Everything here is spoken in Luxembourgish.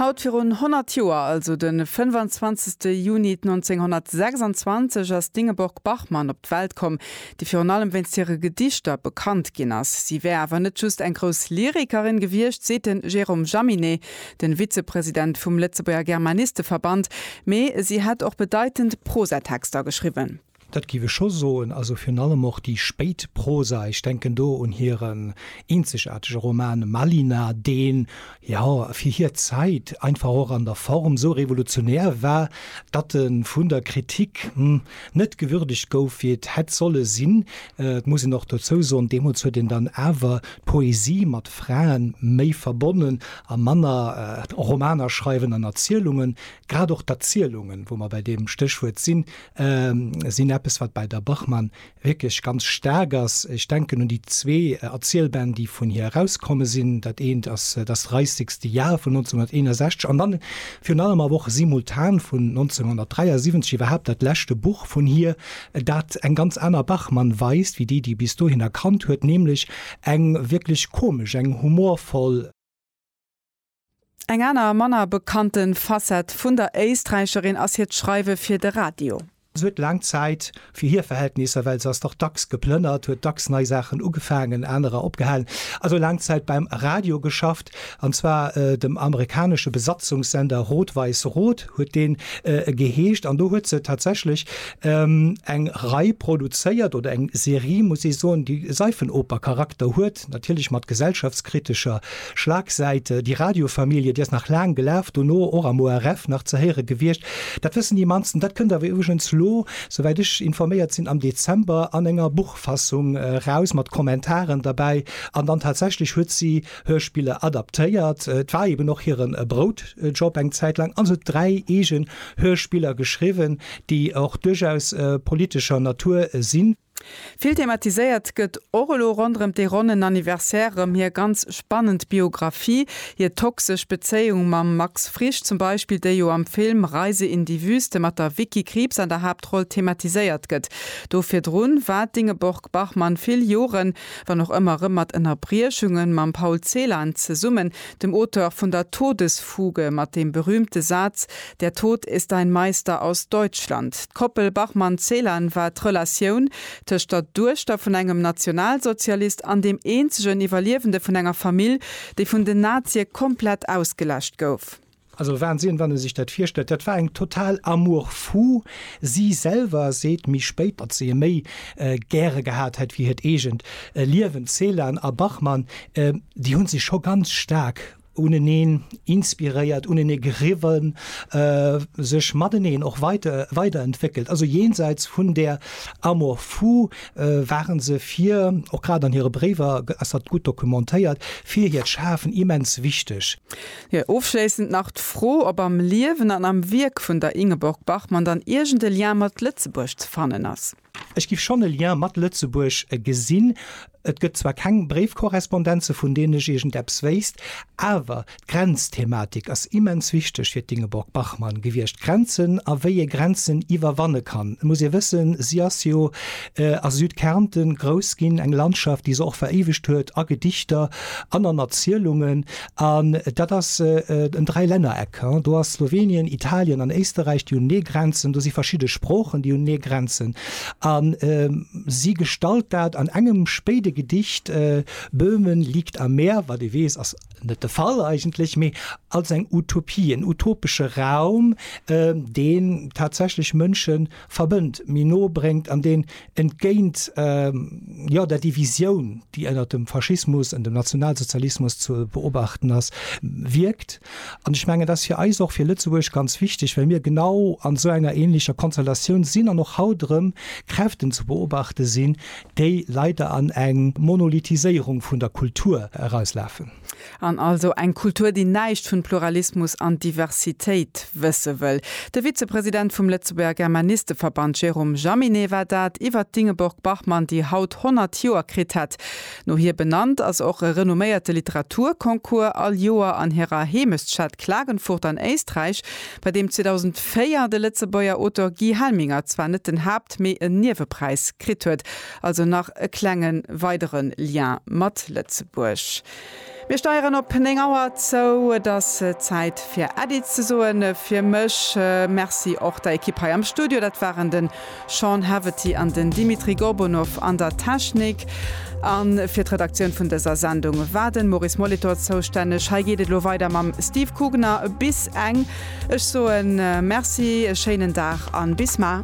Haut virun 100 Joer, also de 25. Juni 1926, ass d'Ingeborg Bachmann op d'Welt komm, déi virun allem wéinst hire Gedichter bekannt ginn ass. Si wär awer net just eng grouss Lyrikerin gewiescht, seet de Jérôme Jaminet, de Vizepresident vum Lëtzebuerger Germanisteverband, mee si hätt och bedeitend Prosatexter geschriwwen. Dat giff ech scho soen. Also virun allem och déi spéit Prosa, ech denken do un hiren eenzegaartege Roman Malina, deen, jo, fir hir Zäit einfach och an der Form sou revolutionär war, datt e vun der Kritik net gewürdegt gouf, wéi et hätt solle sinn. Et muss een och dozou soen, deemools huet een dann awer d'Poesie mat Frae méi verbonnen a manner Romaner schreiwen an Erzielungen. Grad och d'Erzielungen, wou mer bei deem Stéchwuert sinn, sinn eppes, wat bei der Bachmann wierklech ganz staark ass. Ech denken un déi zwee Erzielbänn, déi vun hir erauskomme sinn. Dat eent ass Das reissigste Jahr vun 1961 an dann virun allem awer och Simultan vun 1973, iwwerhaapt dat leschte Buch vun hir, dat eng ganz aner Bachmann weist wéi déi, déi bis dohinner kannt huet, nämlech eng wierklech komesch, eng humorvoll. Eng aner manner bekannte Facette vun der Éisträicherin ass hiert Schreiwe fir de Radio. Se huet laang Zäit, fir hir Verhältnisser, well se ass dach dacks geplënnert, huet dacks nei Saachen ugefaangen, anerer opgehalen, also laang Zäit beim Radio geschafft, an zwar dem amerikanesche Besatzungssender Rot-Weiß-Rot huet dee geheescht. An do huet se tatsächlech eng Rei produzéiert, oder eng Serie, muss ee soen, déi Seifenoper-Charakter huet. Projekt, natierlech mat gesellschaftskritescher Schlagsäit. Die Radiofamilie, déi ass nach laang gelaf, dono och am ORF nach ze héiere gewiescht. Dat wëssen déi mannsten. Dat kënnt awer iwwregens elo, souwäit ech informéiert sinn, am Dezember an enger Buchfassung eraus, mat Kommentaren derbäi. An dann tatsächlech huet si Hörspiller adaptéiert, et war eben och hire Broutjob eng Zäit laang, an se huet dräi eegen Hörspiller geschriwwen, déi och duerchaus politescher Natur sinn. Vill thematiséiert gëtt och elo ronderëm dee ronnen Anniversaire erëm hir ganz spannend Biographie, hir toxesch Bezéiung mam Max Frisch zum Beispill, déi jo am Film Reise in die Wüste mat der Vicky Krieps an der Haaptroll thematiséiert gëtt. Do virdrun war d'Ingeborg-Bachmann vill Joren, wann och ëmmer erëm mat Ënnerbriechungen, mam Paul Celan zesummen, dem Auteur vun der Todesfuge, mat deem berühmte Saz, Der Tod ist ein Meister aus Deutschland D'Koppel Bachmann-Celan war d'Relatioun tëscht der Duechter vun engem Nationalsozialist an deem eenzegen Iwwerliewende vun enger Famill, déi vun den Nazie komplett ausgeläscht gouf. Also Wahnsinn, wann e sech dat virstellt. Dat war eng total amour fou. Si selwer seet méi spéit, datt se e méi gäre gehat hätt wéi hiert eegent Liewen. D'Celan a Bachmann, déi hu sech scho ganz staark uneneen inspiréiert, unenee geriwwen, sech mateneen och weite weiderentwéckelt. Also jenseits vun där Amour fou ware se fir, och grad an hire Bréiwer ass dat gutt dokumentéiert, fir hiert Schafen immens wichteg. Jo, ofschléissend nach d'Fro, ob am Liewen an am Wierk vun der Ingeborg Bachmann dann iergend e Lien mat Lëtzebuerg ze fannen ass? Ech giff schonn e Lien mat Lëtzebuerg gesinn. Et gëtt zwar keng Bréifkorrespondenze vun deenen ech iergendeppes wéisst, awer d'Grenzthematik ass immens wichteg fir d'Ingeborg Bachmann gewiescht, Grenzen a wéi ee Grenzen iwwerwanne kann. Et muss ee wëssen, si ass jo a Südkärnten grouss ginn, eng Landschaft, déi se och veréiwegt huet a Gedichter an an Erzielungen. An dat ass en Dräilännereck. Do ass Slowenien, Italien an Éisterräich, déi hunn ee Grenzen. Do si verschidde Sproochen, déi hunn ee Grenzen. A si gestalt dat an engem spéide Gedicht, Böhmen liegt am Meer, wat ee weess, ass net de Fall eigentlech, mee als eng Utopie, en utopesche Raum, deen tatsächlech Mënschen, verbënnt, méi no bréngt an deen entgéint, jo, der Divisioun, déi ënnert dem Faschismus an dem Nationalsozialismus ze beobachten ass, wierkt. An ech mengen, dat ass fir eis och, fir Lëtzebuerg ganz wichteg, well mir genau an esou enger änlecher Konstellatioun sinn an och haut erëm Kräften ze beobachte sinn, déi leider an eng Monolithiséierung vun der Kultur erauslafen. An also eng Kultur, déi näischt vun Pluralismus an Diversitéit wësse wëll. De Vizepresident vum Lëtzebuerger Germanisteverband Jérôme Jaminet war dat iwwert d'Ingeborg Bachmann, déi haut 100 Joer kritt hätt. No hir benannt ass och e renomméierte Literaturconcours all Joer an hirer Heemechtsstad Klagenfurt an Éisträich, bei deem 2004 de Lëtzebuerger Auteur Guy Helminger zwar net den Haapt-, mee en Niewepräis kritt huet. Also nach e klenge weidere Lien mat Lëtzebuerg. Mir steieren op 9 Auer zou. Et ass Zäit fir Äddi ze soen fir mech. Merci och der Ekipp hei am Studio. Dat waren de Sean Haverty an den Dimitri Gorbunov an der Technik. A fir d'Redaktioun vun dëser Sendung war de Maurice Molitor zoustänneg. Hei geet et elo weider mam Steve Kugner bis eng. Ech soe Merci, e schéinen Dag a bis mar.